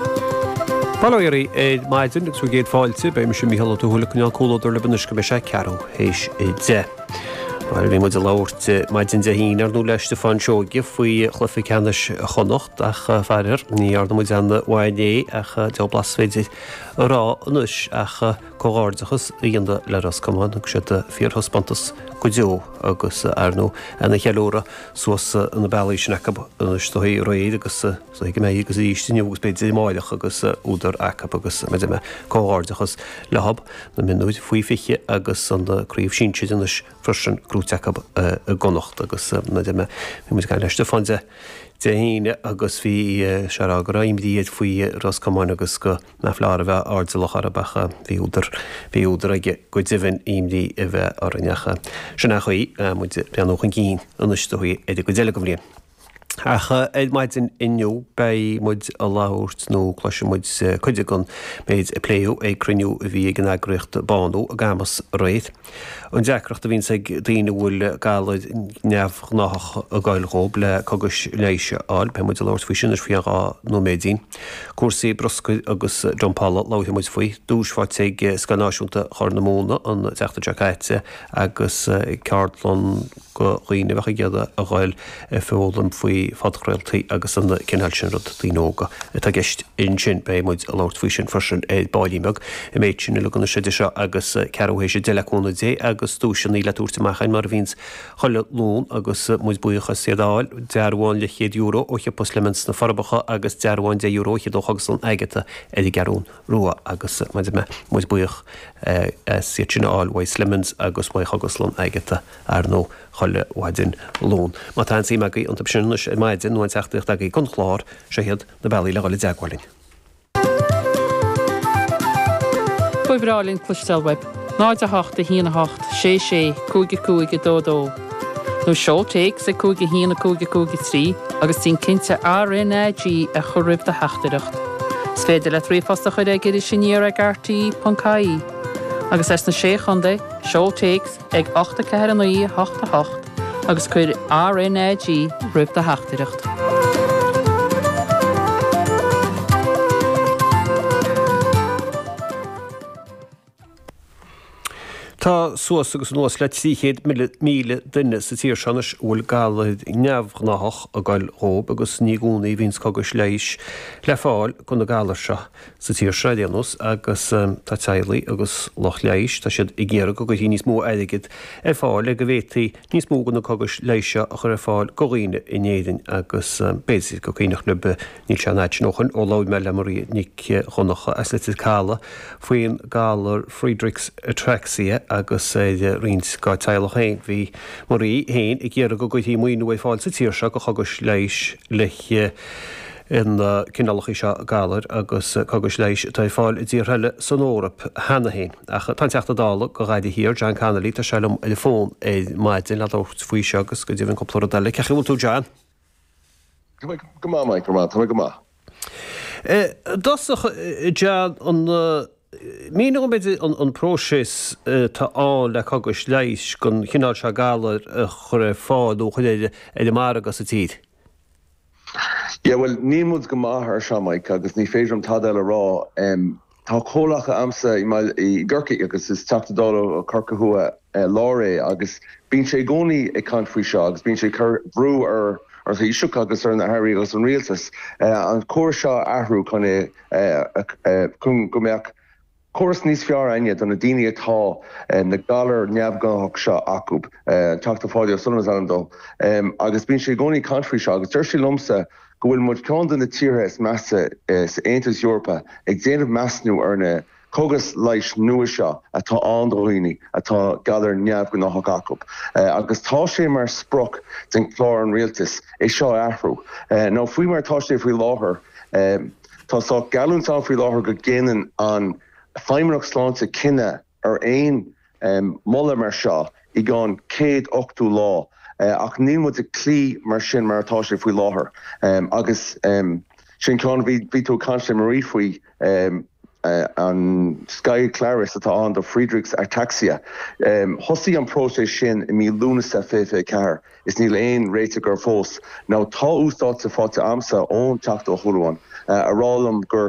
Bail ó Dhia oraibh ar maidin agus céad fáilte, beidh mise Mícheál Ó Tuathail ag coinneáil comhluadar libh anois go mbeidh sé ceathrú théis a deich. Mar a bhí muid ag labhairt maidin Dé hAoine, ar ndú le Stiofán Seoige faoi chluiche ceannais Chonnacht ach faraor ní dhearna muid aon mhaith inné ach cén bhlas is féidir a rá anois ach comhghairdeachas a dhéanamh le Ros Comáin. Thug siad fíorthaispeántas go deo agus ar ndú an-cheiliúradh suas na bealaí sin acu anois. Seo é réidh agus. So thig mé agus arís inniu agus b'fhéidir amáireach agus údar acu agus mar a deirim comhghairdeachas leo, na mionúir faoi 20 agus an craobh sinsir anois freisin gnóite acu i gConnacht agus mar a deirim bhí muid ag caint le Stiofán Dé hAoine agus bhí sé a rá go raibh imní air faoi Ros Comáin agus go mba chóir a bheith airdeallach orthub ach bhí údar bhí údar aige go deimhin imní a bheith orainn ach sin ach í muid breathnú chun cinn anois go dtí an gcuid eile den bhliain. Ach ar maidin inniu beidh muid a labhairt, nó cloisfidh muid cuid den méid a pléadh ag cruinniú a bhí ag an eagraíocht Bánú i gCamas aréir. An deacracht a bhíonns ag daoine a bhfuil galar neamhghnáthach ag goil dhóib le cogais leighis a fháil, beidh muid a labhairt faoi sin ar feadh dhá nóiméadín. Cúrsaí bruscair agus dumpála, labhairfidh muid faoi. Duais faighte ag Scoil Náisiúnta Chorr na Móna an tseachtain seo caite agus ceardlann. go dhaoine a bheadh ag iarraidh a dhul ag foghlaim faoi phodchraoltaí agus an cineál sin rud, daoine óga atá i gceist ansin. Beidh muid ag labhairt faoi sin freisin ar baillín beag, an méid sin uilig idir seo agus ceathrú théis a deich le cúnamh Dé agus duaiseannaí le tabhairt amach a'ainn mar a bhíonns chuile Luan agus muid buíoch as iad a fháil, dearbhán leithchéad euro ó shiopa Slemons sna Forbacha agus dearbhán deich euro ó Chogaslann Agatha ar an gCeathrún Rua agus mar a deirim muid buíoch as iad sin a fháil uaidh Slemons agus uaidh Chogaslann Agatha. Ar ndóigh, chuile mhaidin Luain, má tá aon suim agaibh iontu sin anois ar maidin, nó aon teachtaireacht agaibh don chlár, seo iad na bealaí le dhul i dteagmháil linn. Ba bhreá linn cloisteáil uaibh, 08 118 665 222 nó seol téacs ag 5 1 5 5 3 agus déan cinnte RNAG a chur roimh do theachtaireacht. Is féidir leat ríomhphost a chuir ag irisaniar ag rte.ie agus as na Sé Chontae, seol téacs ag 8 4 9 8 8 agus cuir RNAG roimh do theachtaireacht. Tá suas agus anuas le 300,000 duine sa tír seo anois a bhfuil galar neamhghnáthach ag goil dhóib agus ní i gcónaí a bhíonns cogais leighis le fáil go na galair seo. sa tír seo ar aon nós agus tá teaghlaigh agus lucht leighis, tá siad ag iarraidh go gcuirfí níos mó airgid ar fáil le go bhféadfaí níos mó go na cogais leighis seo a chur ar fáil go dhaoine in Éirinn agus b'fhéidir gur cuimhneach libh, níl sé an fhad sin ó shoin ó labhair mé le Marie Nic Dhonnacha as Leitir Calaidh faoin galar Friedreich's Ataxia atá ar roinnt dá teaghlach féin. Bhí Marie féin ag iarraidh go gcuirfí maoiniú ar fáil sa tír seo go chógais leighis le na cineálacha seo galair agus cógais leighis atá ar fáil i dtíortha eile san Eoraip cheana féin. Ach tá an Teachta Dála go Ghaillimh Thiar, John Connolly, tá sé liom ar an bhfón ar maidin le labhairt faoi seo agus go deimhin cúpla rud eile. Cén chaoi a bhfuil tú John? Go maith Máirín, go raibh maith, tá mé go maith. I dtosach John, an míneá dhom an próiseas atá ann le cógais leighis den chineál seo galair a chur ar fáil nó a chur ar an margadh sa tír? Yeah, bhuel, níl muid go maith ar seo, Máirín, agus ní féidir liom tada eile a rá. Tá comhghleacaí a'msa i mbaile i gCorcaigh agus is Teachta Dála Corcaigh Thuaidh Láir é agus bíonn sé i gcónaí ag caint faoi seo agus bíonn sé ag cur brú ar an Taoiseach agus ar na hAirí agus ar an Rialtas an córas seo a athrú chun é chun go mbeadh Córas níos fearr againne do na daoine atá na galair neamhghnáthach seo acu. An Teachta Páidí O'Sullivan is ainm dó agus bíonn sé i gcónaí ag caint faoi seo agus dúirt sé liomsa go bhfuil muid ceann de na tíortha is measa sa Aontas Eorpach ag déanamh measnú ar na cógais leighis nua seo atá ann do dhaoine atá galair neamhghnáthach acu agus tá sé mar sprioc de chlár an Rialtais é seo a athrú ón gcaoi mar atá sé faoi láthair. Tá saghas geallúint ann faoi láthair go ndéanann an Feidhmeannacht Sláinte cinneadh ar aon mholadh mar seo i gceann céad ochtú lá, ach níl muid ag cloí leis sin mar atá sé faoi láthair. Agus sin ceann a bhí bhí tú ag caint le Marie faoi, an Skyclarys atá ann do Friedreich's ataxia. Thosaigh an próiseas sin i mí Lúnasa 2024. Is níl aon réiteach air fós. Now tá update faighte a'msa ón Teachta Ó Súilleabháin ag rá liom gur.